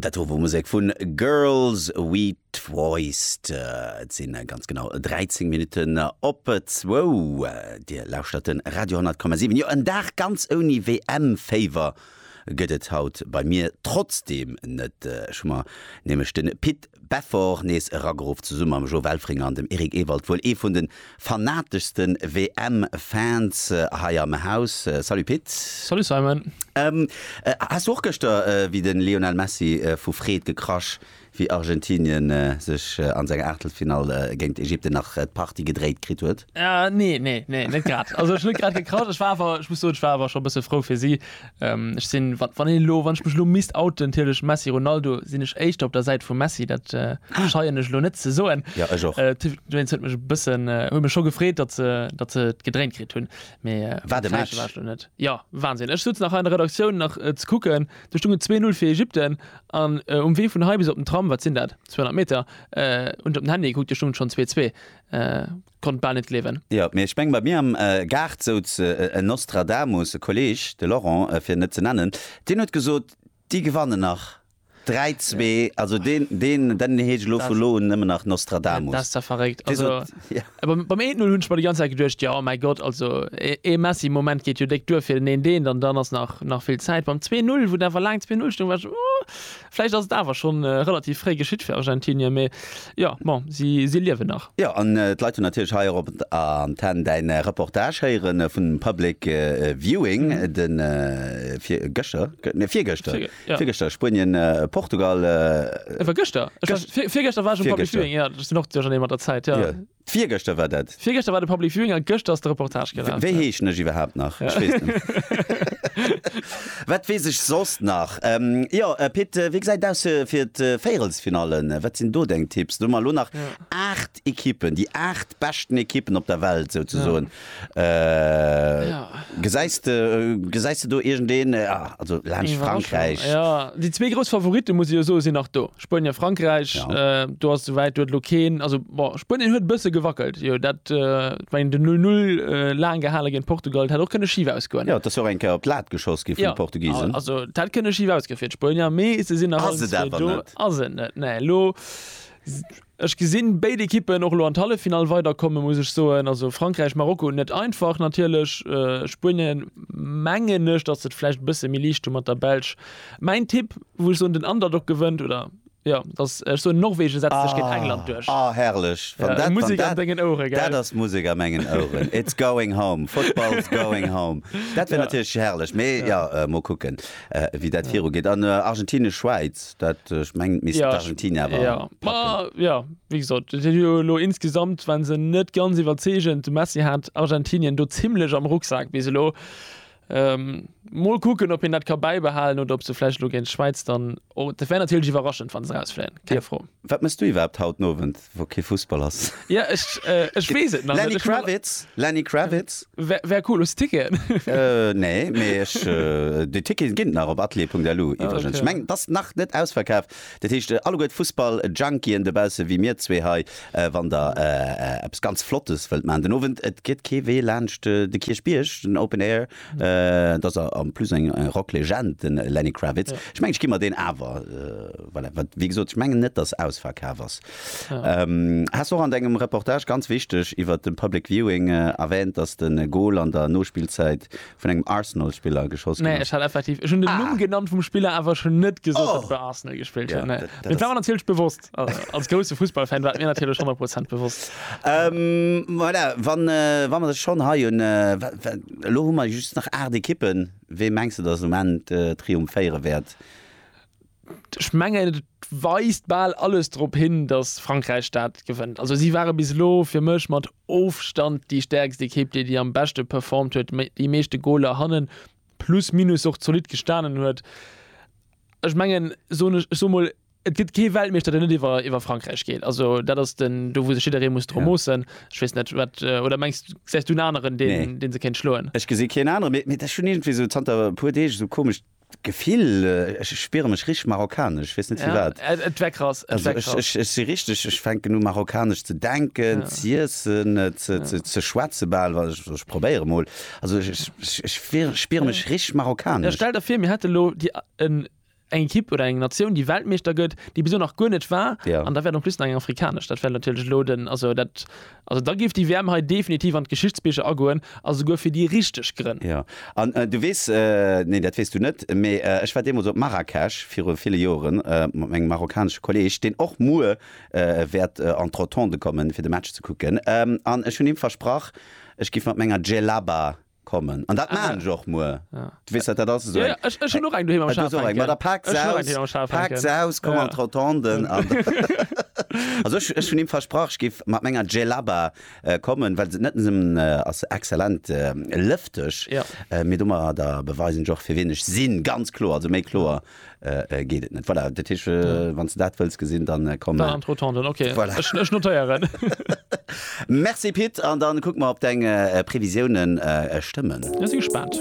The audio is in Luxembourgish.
Dat wor Musek vun Girls We Twice. Et sinn ganz genau 13 Minutten op zwou. Dir lauschtert de Radio 10,7. Jo, en Dag ganz ouni WM-Féiwer gëtt et haut bei mir trotzdeem net. Ech hu mer nämlech de Pit Beffort nees erageruff, zesumme mam Jo Welfring an dem Eric Ewald, wuel ee vun de fanateschsten WM Fans hei am Haus. Salut Pit. Salut Simon. Ähm has du och gëschter wéi den Lionel Messi vu Freed gekrasch wéi Argentinien sech an senger Aachtelfinall géint Ägypten nach d'Partie gedréit kritt huet? Nee, nee, nee net grad. Also ech hunn net grad gekrasch, ech war awer, ech muss soen, ech war awer scho bësse frou fir si, Ech sinn, wann, wann een elo, wann ech mech elo misst outen, natierlech Messi, Ronaldo, sinn ech éischter op der Säit vum Messi, dat scheien ech elo net ze soen. Ja, ech och. D'Juventus huet mech e bëssen, huet mech scho gefreet, datt se, datt se et gedréint kritt hunn, mä Wat e Match! Jo, Wahnsinn. Ech souz nach hei an der Redaktioun nach ze kucken, do stung et 2-0 fir Ägypten an um Wee vun hei bis op den Tram, wat sinn dat, 200 Meter, hunn ech op den Handy gekuckt, do stung et schonn 2-2. konnt bal net gleewen. Jo, mee ech meng, bei mir am Gaart souz en Nostradamus, e Kolleg, de Laurent, fir en net ze nennen, deen huet gesot, déi gewannen nach 3, 2, also deen, deen, deen heescht elo vu elo un nëmmen nach Nostradamus. Dat ass da verréckt. Dee Also, sot, jo. beim, beim 1, 0 hunn ech mer déi ganz Zäit geduecht, jo, mäi Gott, also e, ee Messi-Moment geet jo déck duer fir den 1, 1 an dann ass nach, nach vill Zäit. Beim 2, 0, wou dann awer laang 2, 0 stoung, war ech, oh. Vläicht ass et awer scho relativ fréi geschitt fir Argentinier, mee jo, bon, si liewen nach. Jo, an d'Leit hunn natierlech hei och op Antenn däin Reportage héieren vun dem Public Viewing, de virgëschter, nee, virgëschter, virgëschter, Spuenien, Portugal. Et war gëschter, virgëschter war ech um Public Viewing, jo, ech sinn och duerchernee mat der Zäit, jo. Virgëschter war dat. Virgëschter war de Public Viewing a gëschter ass de Reportage gelaf. Wéi heeschen ech iwwerhaapt nach? Ech weess net. Wat weess ech soss nach? Jo, Pit, wéi gesäit et aus fir d'Véierelsfinalle? Wat sinn do deng Tipps? Do hu mer elo nach 8 Ekippen, déi 8 beschten Ekippen op der Welt souzesoen. Gesäis de gesäis de do iergendeen, also laanscht Frankräich? Iwwerraschung, jo. Déi zwee grouss Favoritten, muss ee jo soen, sinn nach do, Spuenien, Frankräich. Jo. Do ass souwäit, do huet elo keen, also bon, Spuenien huet e bësse gewackelt, jo, dat wéint dem Null Null laang gehale géint Portugal, dat hätt och kënne schif ausgoen. Jo, et ass jo och eng Kéier op d'Lat geschoss gi vun de Portugisen. Jo, also dat hätt kënne schif ausgoe fir d'Spuenier, mee se sinn nach. Ass et awer net. Ass et net, nee. Elo. Ech gesinn béid Ekippen och elo an d'Halleffinall weiderkomme muss ech soen. Also Frankräich, Marokko net einfach natierlech. Spuenien mengen ech, datt se et vläicht e bësse méi liicht hu mat der Belsch. Mäin Tipp, wou ech soen den Underdog gewënnt oder jo, datt ech soen Norwegen setzt sech géint England duerch. Ah, herrlech! Wann dat, wann dat, dat ass Musek a mengen Oueren. It's going home! Football's going home! Dat wär natierlech herrlech, mee jo, mol kucken. wéi dat viru geet an Argentinien Schwäiz dat ech mengen misst Argentinien awer packen. Jo wéi gesot et jo elo insgesamt wann se net ganz iwwerzeegend de Messi hat Argentinien do zimlech am Rucksak bis elo mol kucken op een dat ka bäibehalen oder op se vläicht elo géint Schwäiz dann och dat wär natierlech iwwerraschend wann se rausfléien, keng Fro. Wat mëss du iwwerhaapt haut den Owend? wou kee Fussball ass. Ja ech ech wees et nach net. Lenny Kravitz, Lenny Kravitz. Wär wär cool. Hues Ticketen? Nee, mee ech déi Ticketen ginn et nach op atelier.lu iwwregens. Ech mengen et ass nach net ausverkaf. Dat heescht alleguer d'Fussball Junkien dobausse wéi mir zwee hei, wann der eppes ganz Flottes wëllt man den Owend, et geet kee Wee laanscht de Kierchbierg, den Open Air. Et ass en plus eng Rocklegend, de Lenny Kravitz. Ech mengen, ech ginn mer deen awer. Voilà, wat, wéi gesot, ech mengen net, dass ausverkaf ass. Has och an dengem Reportage, ganz wichteg, iwwer de Public Viewing erwähnt, dass de Gol an der Nospillzäit vun engem Arsenal-Spiller geschoss ginn Nee, ass. ech hat effektiv, ech hunn den Numm genannt vum Spiller, awer ech hunn net gesot, dass e bei Arsenal gespillt huet. Nee, dat war mer natierlech bewosst. Als grousse Fussballfan war et mir natierlech 100 Prozent bewosst. Voilà, wa mer sech schonn hei hunn, elo hu mer just nach aacht Ekippen. Wee mengs de, datt um Enn triumphéiere wäert? Ech mengen, et weist bal alles drop hin, datt Frankräich dat gewënnt. Also si ware bis elo fir mech mat Ofstand déi stäerkst Ekipp, déi déi am beschte performt huet, déi meeschte Goler hannen, plus minus och zolidd gestanen huet. Ech mengen, soen ech, ech soe mol, Et gëtt kee Weltmeeschter, deen net iwwer iwwer Frankräich geet. Also dat ass den, do wou sech jidderee muss dru moossen. Ech weess net, wat, oder mengs du, gesäis du en aneren, deen, nee, deen se kéint schloen? Ech gesi keen aneren, mee, mee ech hunn iergendwéi esou zanter e puer Deeg esou komescht Gefill, ech spiere mech richteg marokkanesch, ech weess net firwat. Ja, et wär krass, et wär krass. Ech si richteg, ech fänken u marokkanesch ze denken, ja, z'iessen, ze, ze, ze schwätze bal, wa, also ech probéiere mol. Also ech, ech, ech, ech spiere mech richteg marokkanesch. Stell der vir, mir hätte lo déi, en. Eng Ekipp oder eng Natioun, déi Weltmeeschter gëtt, déi bis elo nach guer net war, an dat wäert en plus nach eng afrikanesch, dat wäert natierlech elo den, also dat, also da géif déi WM hei definitiv an d'Geschichtsbicher agoen, a souguer fir déi richteg Grënn. Jo, an du weess, nee, dat weess du net, mee ech war deemools op Marrakesch viru ville Joren mat mengem marokkanesche Kolleeg, deen och muer wäert an d'Rotonde kommen, fir de Match ze kucken, an ech hunn him versprach, ech géif mat menger Djellaba kommen an dat ah, maan ech och muer ja. du wees dat dat ass so ja, ech, ech hun och eng doheem am Schaf hänken da paak se aus, paak se aus komm ja. an Trotanden an also ech, ech hun im versprach ech gif mat menger Gelaba äh, kommen well se net sem äh, ass exzellent äh, lëfteg ja. äh, mir dummer da beweisen joch fir ween ech sinn ganz kloer also méi kloer geet et net voilà dat heesch wann s de dat wëlls gesinn dann komm dann an d'Rotonde dann ok voilà ech ech notéieren Merci Pit an dann kucke mer ob deng Previsiounen stëmmen. Mir si gespaant.